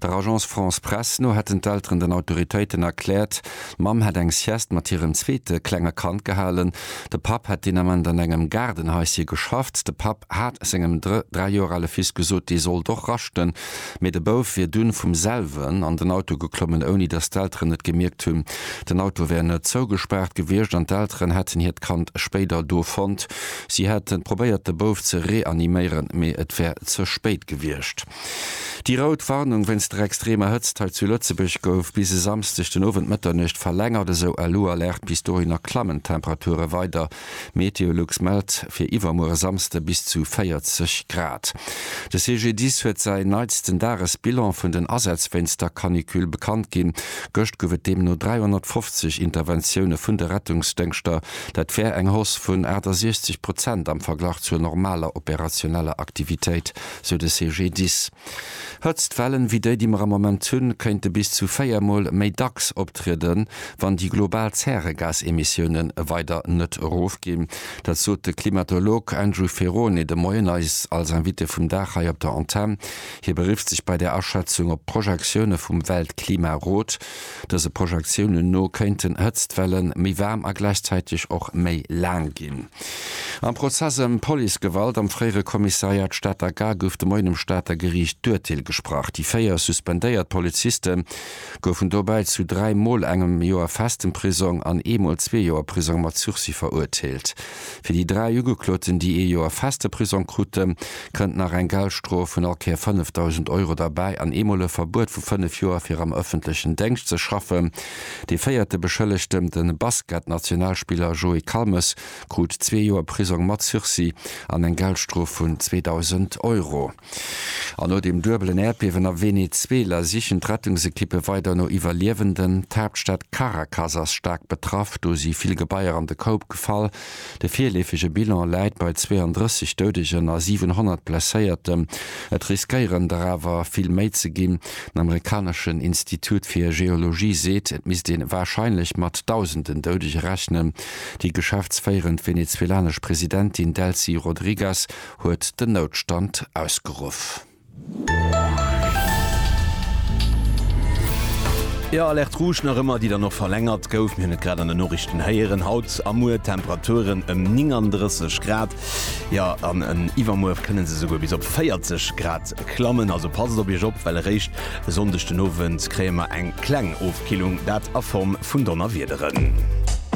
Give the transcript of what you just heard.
Der Agence France Presse no hätten d'Elteren den Autoritéiten erkläert, d'Mamm hätt eng Sieste mat hirem zweete klenge Kand gehalen. De Papp hätt deen Ament an engem Gaardenhaisje geschafft. De Papp hat sengem dräi Joer ale Fils gesot, dee sollt och raschten, mee de Bouf wier dunn vum selwen an den Auto geklommen, ouni datt d'Elteren et gemierkt hunn. Den Auto wär net zougespaart gewiescht an d'Elteren hätten hiert Kand spéider do fonnt. Si hätte probéiert de Bouf ze reaniméieren, mee et wär ze spéit gewiescht. Déi rout Warnung wéinst der extremer Hëtzt hei zu Lëtzebuerg gouf bis e Samsdeg den Owend Mëtternuecht verlängert, esou elo Alerte. Bis dohinner klammen d'Temperature weider. Meteolux mellt fir iwwermuer e Samsde bis zu 40 Grad. De CGDIS huet säin neitsten Dagesbilan vun den Asätz wéinst der Canicule bekannt ginn. Gëscht gouf et deemno 350 Interventioune vun de Rettungsdëngschter. Dat wär eng Hausse vun 68 Prozent am Verglach zur normaler operationeller Aktivitéit. sou de CGDIS. Hëtztwellen wéi déi, déi mer am Moment hunn, kéinte bis zu véier Mol méi dacks optrieden, wann déi global Zäregasemissiounen weider net erofginn. Dat sot de Klimatolog Andrew Ferrone de Moien eis als Invité vum Dag hei op der Antenn. Hie berifft sech bei där Aschätzung op d'Projektioune vum Weltklimarot. Dëse Projektiounen no kéinten d'Hëtztwellen méi waarm a gläichzäiteg och méi laang ginn. Am Prozess ëm Policegewalt am fréiere Kommissariat Stater Gare gouf de Moien um Stater Geriicht d'Urteel gesprach. Déi véier suspendéiert Poliziste goufen dobäi zu dräi Mol engem Joer festem Prisong an ee Mol zwee Joer Prisong mat Sursis verurteelt. Fir déi dräi Ugekloten, déi ee Joer feste Prisong kruten, kënnt nach eng Geldstrof vun all Kéier 5.000 Euro derbäi an eemol e Verbuet vu fënnef Joer fir am ëffentlechen Déngscht ze schaffen. Dee véierte Beschëllegten, de Basket-Nationalspiller Joé Calmes, krut zwee Joer Prisong mat Sursis an eng Geldstrof vun 2.000 Euro. An no dem duebelen Äerdbiewen a Venezuela sichen d'Rettungsekippe weider no Iwwerliewenden. D'Haaptstad Caracas ass staark betraff, do si vill Gebaier an de Koup gefall. De virleefege Bilan läit bei 32 Doudegen a 700 Blesséierten. Et riskéieren der awer vill méi ze ginn. Den amerikaneschen Institut fir Geologie seet, et misst ee warscheinlech mat Dausenden Doudege rechnen. Déi geschäftsféierend venezuelanesch Presidentin Delcy Rodriguez huet den Noutstand ausgeruff. Jo, Alerte Rouge nach ëmmer, déi dann och verlängert gouf. Mir hunn et grad an den Noriichten héieren. Haut a muer Temperaturen ëm 39 Grad, jo, an iwwermuer kënne se esouguer bis op 40 Grad klammen. Also passt op Iech op, well eréischt e Sonndeg den Owend kréie mer eng kleng Ofkillung, dat a Form vun Donnerwiederen.